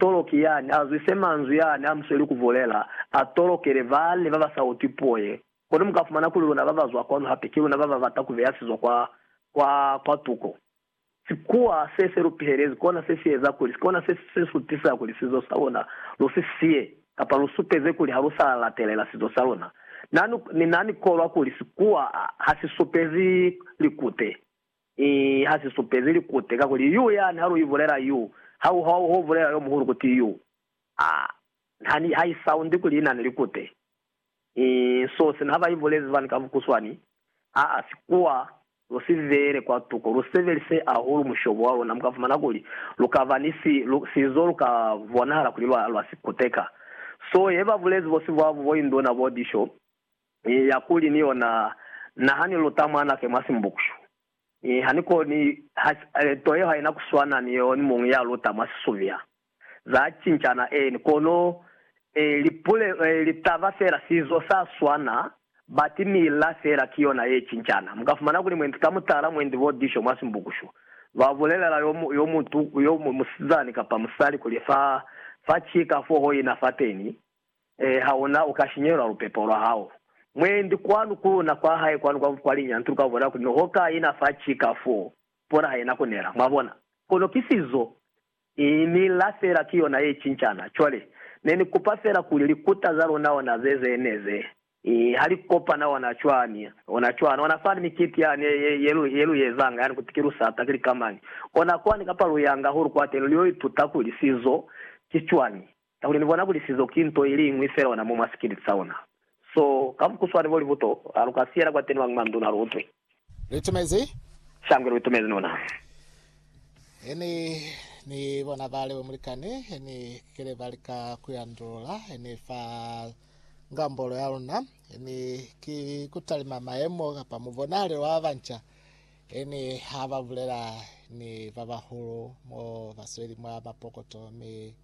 toloki yani azwise manzwi yani amusweli kubulela, atolokele bane babasautwi puo ye. Kono mukafumana kuli luna babazwa kwanu hape ki luna bababata kubeya sizo kwa, kwa, kwa tuko. Sikuwa se selupihelezi kona sesieza kuli, kona se sesutisa kuli sizo saluna lusisiye, kapa lusupeze kuli halusalatelela sizo saluna. Na, na, na nikolwa kuli sikuwa hasisupezi likute. Ki ha si supezi likute, kakuli Yu yani ha lu ibulela Yu, ha ku hwa ho bulela yo muhulu kuti Yu. A, ha ni, ha i soundi kuli i na ni likute. I, so sina ha ba ibulezi fani ka bukuswani, a, a si kuwa, lu si beele kwa tuko, lu sebelise ahulu mushobo wa luna, mu ka fumana kuli lu ka ba ni si, lu, sizo lu ka bonahala kuli lwa, lwa sikuteka. So ye ba bulezi bo sibwabu, bo induna, bo disho, Ni ya kuli ni yona naha ni luta mwana ke mwa simbukyu. Mi ha ni koni, ha, nto yeo haina kuswana ni yeo ni muñwi ya luta mwa sisumya. Za cincana, eeni, kono, e, lipule, e, litaba fela sizo sa swana, bati mila fela ki yona ye cincana. Mu ka fumana kuli mwendi ka mutala mwendi bo disho mwa simbukyu. Lwa bulelela yo, yo mutu, yo, musizani kapa musali kuli fa, fa cika fo ho ina fateni, Ee, ha ona u ka shinyelwa lupepo lwa hao. Mwendi kwanu ku na kwa hae kwanu kwa, kwa linya ntu lu ka bona kuli noho ka ina fa cika foo, pona ha ina ku nela. Mwabona? Kono ki sizo. I nila fela ki yona ye cincana. Cwale, ne ni kupa fela kuli likuta za luna ona ze, ze ne ze, i, ha li kopana ona cwani, ona cwana, ona fani mikiti yani ye, ye, ye lu, ye lu ezanga yani, kuti ki lusata, ki likamañi, ona kwani kapa luyanga hulu kwateni, lu yo ituta kuli sizo ki cwani. Kakuli ni bona kuli sizo ki nto iliñwi fela ona mo mwa sikiliti sa ona. So, ka mukuswani bo libuto, ha lu ka siyela kwateni mwa manduna lu utwe. Lu itumezi? Shangwe lu itumezi nuna. He ni, ni bona ba Leo Mulikani, he ni kile ba lika ku ya ndulula, he ni fa ngambolo ya luna, he ni ki ku talima mayemo kapa mubonali wa banca, he ni ha ba bulela ni ba bahulu mo ba sweli mwa mapokoto, mi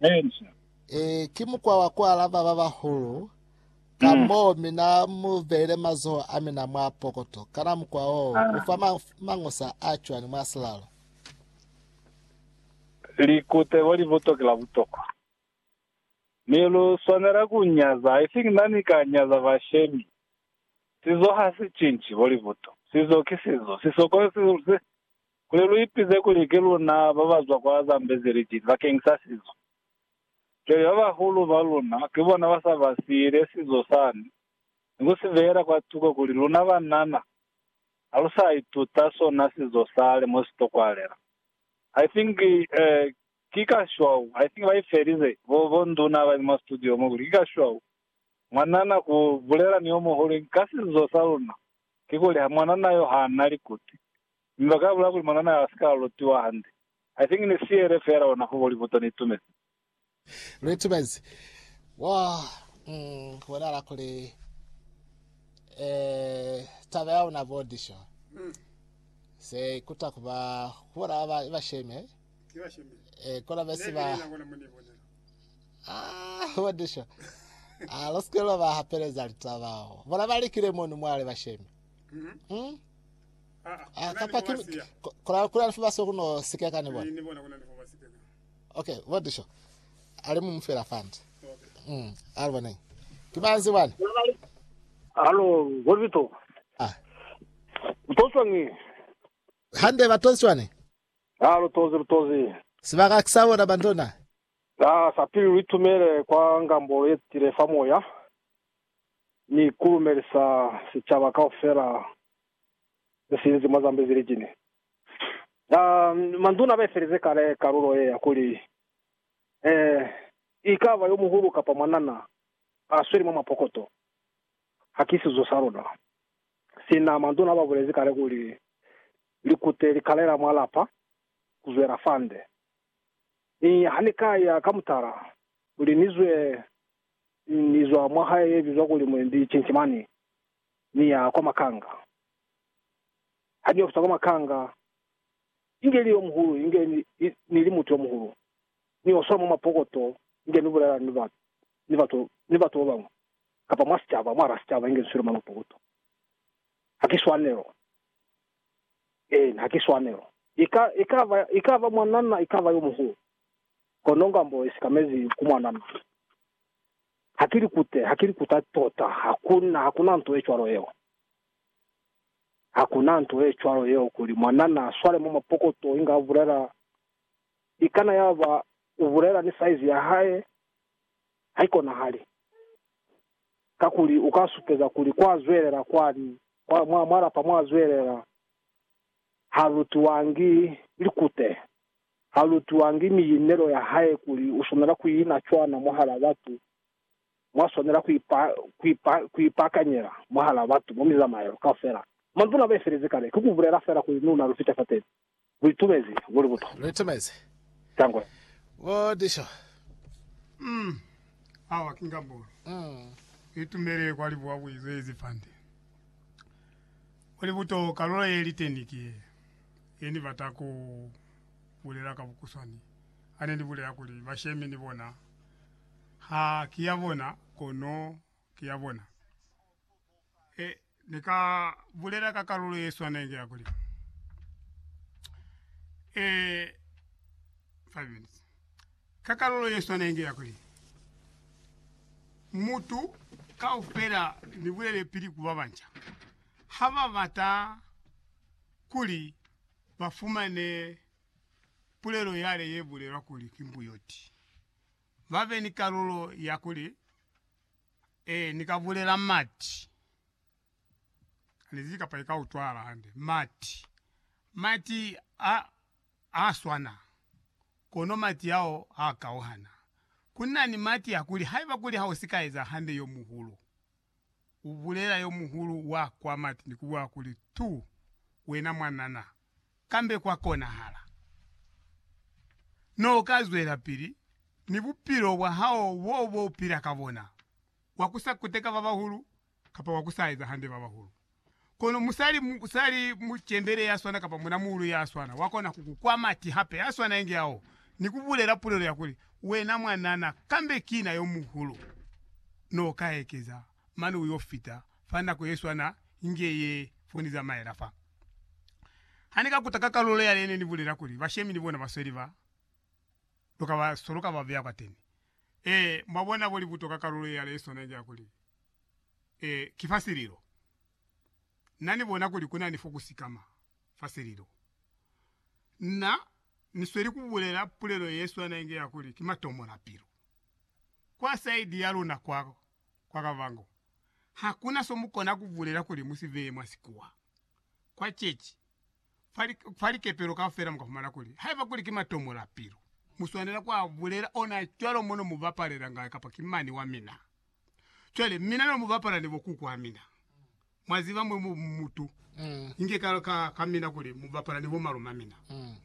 Elisha. Ee, ki mukwa wa ku alaba ba bahulu, ka Mm. moo mi na mu beile mazoho a mina mwa pokoto. Kana mukwa wo Ah. u fa ma- mañusa a cwani mwa silalo? Likuteko li buto ki la butokwa. Mi lu swanela ku nyaza, I think na ni ka nyaza bashemi. Sizo ha si cinci, bo libuto. Sizo ki sizo. Sisokolo si, si, Kuli lu ipize kuli ki luna ba ba zwa kwa Zambezi Region bakeng sa sizo. Cwale ba bahulu ba luna ki bona ba sa ba siile sizo sani, ni ku si beela kwa tuko kuli luna banana ha lu sa ituta sona sizo sale mo si tokwalela. I think, eh, ki ka shwau, I think ba i felize, bo, bo nduna ba li mwa studio mo, kuli ki ka shwau mwanana ku bulela ni yo muhulu ka sizo sa luna, kikuli ha mwanana yo ha na likuti. Mi ba ka bulela kuli mwanana ha si ka lutiwa hande. I think ni siyele feela ona ho Hollywood ni itumezi. Lu itumezi. Wo ku bonahala kuli taba ya una bo Disho se ikuta ku ba ku bona ba ba i ba sheme. Kono be si ba ah bo Disho ah lu sike lwa ba hapeleza litaba bona ba likile mono mwale ba sheme. Ah, kapa ki, ki kuna, kuna lifuba sio kuno sikeka ni bona. Okay, bo disho. Ale mu mufela fandi. Mm, ale bona. Kibanzi bwana. Alo, ngozito. Ah. Mtoswa ngi. Hande batoswa ni. Alo tozi tozi. Sibaka kisabona bandona. Ah, sapili litumele kwa ngambo yetile fa moya. Ni kulumelisa sichaba kaufela ze sinzi mwa Zambezi li cine. A manduna ba ifelezi kale kalulo ye ya kuli, E i ka ba yo muhulu kapa mwanana a sweli mwa mapokoto, ha ki sizo sa luna. Sina manduna ba bulezi kale kuli, Likute li kalela mwa lapa ku zwela fande. Mi ha ni ka ya ka mutala kuli ni zwe, ni zwa mwa hae ye bizwa kuli Mwendi Cincimani, Ni ya kwa makanga. Ha ni ofisa kwa makanga, inge ili yomuhulu, inge ni, ni, ni li mutu yomuhulu, ni oswa mwa mapokoto, inge ni bulela ni batu, ni batu, ni batu babañwi, kapa mwa sicaba, mwa rasicaba, inge ni swile mwa mapokoto. Ha ki swanelo. Eena, ha ki swanelo. I ka, i ka ba, i ka ba mwanana, i ka ba yomuhulu, kono nga mbo i sikamezi ku mwanana. Ha ki likute, ha ki likuta tota, hakuna, hakuna nto ye cwalo yeo. Hakuna nto ye cwalo yeo kuli mwana na swale mwa mapokoto inga a bulela, ikana yaba u bulela ni saizi ya hae, haikonahali. Kakuli u ka supeza kuli kwa zwelela kwani, kwa, mwa, mwa lapa mwa zwelela, ha lutiwangi likute. ha lutwangi mi yinelo ya hae kuli u swanela ku ina cwana mwahala batu, mwa swanela ku ipakanyela mwahala batu mwa mizamaelo kaufela. Manzwi n'a baifelezi kale ki ku bulela fela kuli ni una lu fita fateni. Lu itumezi luli buto. Lu itumezi. Tangwe. Bo Disho. Um, awa ki ngambulu. Lu itumele kwa libuwa ku izwezi fande. Luli buto, kalulo ye liteni ki ye. He ni bata ku bulela ka bukuswani, ha ne ni bulela kuli bashemi ni bona ha ki ya bona, kono ki ya bona. He ni ka bulela ka kalulo ye swanengi ya kuli, eh, five minutes, ka kalulo ye swanengi ya kuli, mutu kaufela ni bulele pili ku babanca, ha ba bata kuli ba fumane pulelo yale ye bulelwa kuli ki mbuyoti, ba be ni kalulo ya kuli, Ee, ni ka bulela mati. Hanizibi kapa i ka utwahala hande. Mati. Mati a, a swana, kono mati ao a kauhana. Ku na ni mati a kuli haiba kuli ha u si ka eza hande yo muhulu, u bulela yo muhulu wa kwa mati ni ku bwa kuli, Tu wena mwanana, kambe kwa konahala no ka zwelapili ni bupilo bwa hao bo bo pila ka bona, wa ku sa kuteka ba bahulu kapa wa ku sa eza hande ba bahulu. Kono musali, musali mucembele ya swana kapa muna muulu ya swana wa kona ku ku kwa mati hape a swana inge ao, ni ku bulela pulelo ya kuli, Wena mwanana, kambe ki na yo muhulu, no ka ekeza mane u yo fita fa nako ye swana inge ye fo ni zamaela fa. Ha ni ka kuta ka kalulo yale ne ni bulela kuli bashemi ni bona ba sweli ba, lu ka ba soloka ba beya kwateni. Ee, mwabona kuli kutoka kalulo ye yale iswana ja kuli, Ee, ki fa sililo. Na ni bona kuli kuna ni fo ku sikama, fa sililo. Na ni sweli ku bulela pulelo ye swana inge ya kuli ki matomo la pilu. Kwa saidi ya luna kwa, kwa kabango, hakuna so mu kona ku bulela kuli mu si beye mwa sikuwa. Kwa cechi, fa, li, fa likepelo kaufela mu ka fumana kuli haiba kuli ki matomola pilu, mu swanela ku a bulela ona cwalo mo no mu bapalela ngayo kapa ki mani wa mina. Cwale, mina no mu bapala ni bo kuku a mina. Mwa ziba mwe mu mutu, inge ka, ka, ka mina kuli mu bapala ni bo malume a mina,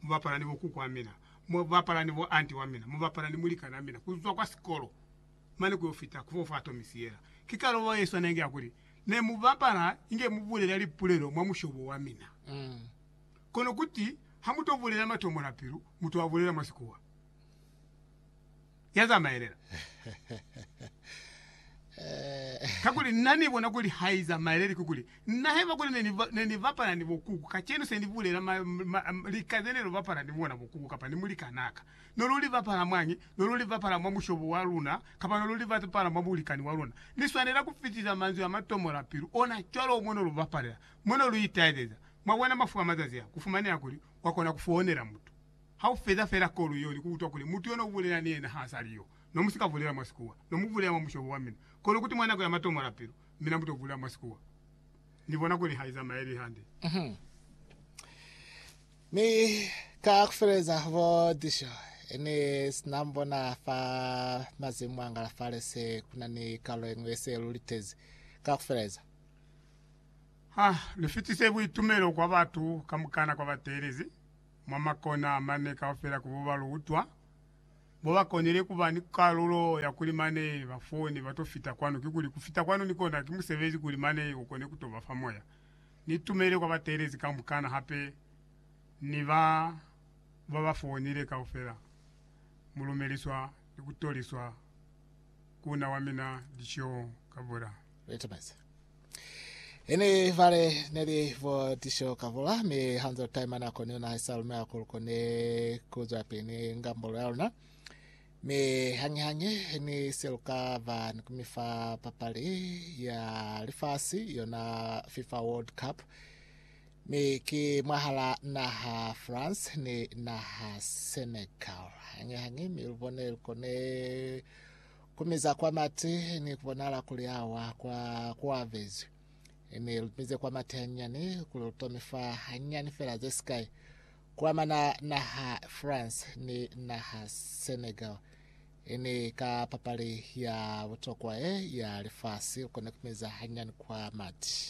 mu bapala ni bo kuku a mina, mu bapala ni bo anti wa mina, mu bapala ni mulikana a mina ku zwa kwa sikolo. mane ku yo fita ku fo fa tomi siyela. Ki kaloba ye swana inge ya kuli, Ne mu bapala inge mu bulela lipulelo mwa mushobo wa mina. Kono kuti ha mu to bulela matomo la pilu, mu to a bulela mwa Sikuwa. Ya zamaelela. Kakuli na ni bona kuli ha i zamaeleli, kikuli, na haiba kuli ne ni, ne ni bapala ni bo kuku, kacenu se ni bulela ma, ma, ma, lika ze ne lo bapala ni bona bo kuku kapa ni mulikanaa ka, No lu li bapala mwañi? No lu li bapala mwa mushobo wa luna, kapa no lu li bapala mwa mulikani wa luna. Ni swanela ku fitisa manzwi a ma tomola pilu ona cwalo mo no lu bapalela, mo no lu itaezeza. Mwabona, mafu a mazazi a, ku fumaneha kuli wa kona ku founela mutu, ha u feza fela kolu yeo ni ku utwa kuli mutu yo no bulela ni yena ha sa li yo. No mu si ka bulela mwa Sikuwa. No mu bulela mwa mushobo wa mina. Kono kuti mwa nako ya matomola pilu, mina mu to bulela mwa Sikuwa. Ni bona kuli ha i zamaeli hande. Mi kakufeleza bo Disho ni sina mbona fa mazimu angala fale se kuna ni kalulo yeñwi yese lu litezi kakufeleza. Ha lu fitise buitumelo kwa batu kamukana kwa ba teelezi mwa makona a mane kaufela ku bo ba lu utwa, bo ba konile ku ba ni kalulo ya kuli mane ba fone ba to fita kwanu. Kikuli ku fita kwanu ni kona ki musebezi kuli mane u kone ku to ba fa moya. Ni tumele kwa bateelezi kamukana hape ni ba ba ba foonile kaufela. Mu lumeliswa ni ku toliswa ku na wa mina Dishoong Kabura. Litumezi. Ini vale neli vo Dishoong Kabura, mi hanze taimana koni una haisa lumeha kuli koni kuzwapili ni ngambolo yaluna. Mi hañi-hañi ni se lu ka ba ni kumi fa papali ya lifasi, yona Fifa World Cup, mi ki mwahala naha France ni naha Senegal. Hañi-hañi mi lu bone lu kone ku miza kwa mati ni ku bonahala kuli awa kwa kuavezwi. Mi lu mize kwa mati hanyinyani kuli lu tome fa hañinyani fela ze sikai Ku amana naha France ni naha Senegal ni ka papali ya butokwa ye ya lifasi, u kona ku meza hanyani kwa mati.